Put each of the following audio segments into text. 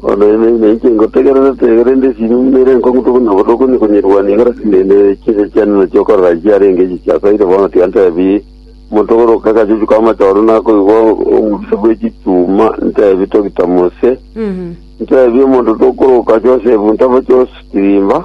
Bono ime ime inche ngotegererete, korende esini ime ere enkong'u toku na botoku onye konyerwania igoro ase ne- ne- chinsa chiane na chiokorora echio chiarenge echi chiasaire bono tiantebi omonto ogoro oka agachuchu k'amache ororo nakoigwa omobisa bwe chituma ntebi togita mose ntebi omonto tokoroka Josefu ntabo Josefu tirimba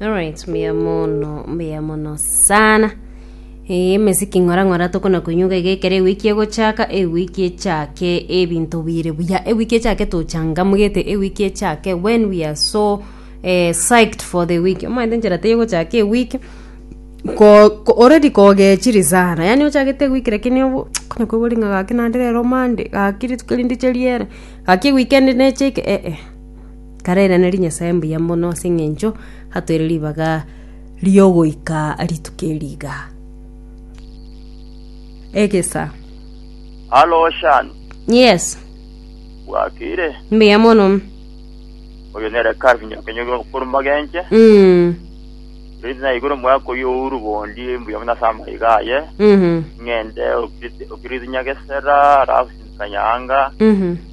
Alright, mbuya mono, mbuya mono sana. Eh, emesiki ng'ora ng'ora tokona kunyuga iga ekero ewiki egochaka ewiki echake ebinto bire buya ewiki echake tochangamugete ewiki echake when we are so eh, psyched for the week omanyete enchera teiyo gochaka ewiki ko ko- already kogechiri sana yaani ochagete ewiki lakini obo okona koigwa ring'a gaki naende rero monday gaki rituko rinde riere gaki ewiki ende neche eke eh, eh. Karairaneri Nyasae mbuya mono ase engencho atoire ribaga riogoika rituko eri iga. Egesa. Halo Shan, Yes, bwakire? mbuya mono. Oyo nere Calvin Nyakenyori okorwa Magenche. Mm. Riri naigure omwaka oyo ouru bondi mbuya buna ase amaiga aye. Mhm. Ng'ende okiriti nyagesera, alafu sindikanyanga. Mhm.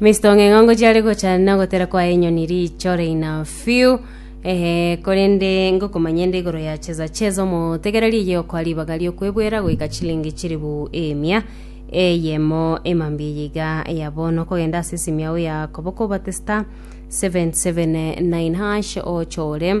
Misto ng'eng'ongo chiare gochana na ogotera kwa enyoni riicho reina fiu ehe korende ngokomanyende igoro ya cheza cheza omotegera riye okwa ribaga riokwebwera goika chilingi chiribu emia eyemo emambia yiga ya bono kogenda ase esimia oya koboko obate star 779 hash ochore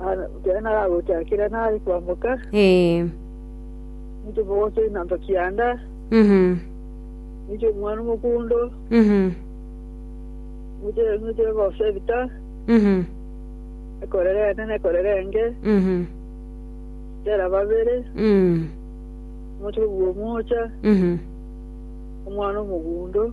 Ara- Ekero naragochakera nare kwamboka, Ee. ninche omogoso inanto kianda, Mhm. ninche omwana omokundo, Mhm. ninche ninche ogosa ebita, Mhm. ekorera ende na ekorera enge, Mhm. tera babere, Mm. omochie kobua omocha, Mhm. omwana omogundo,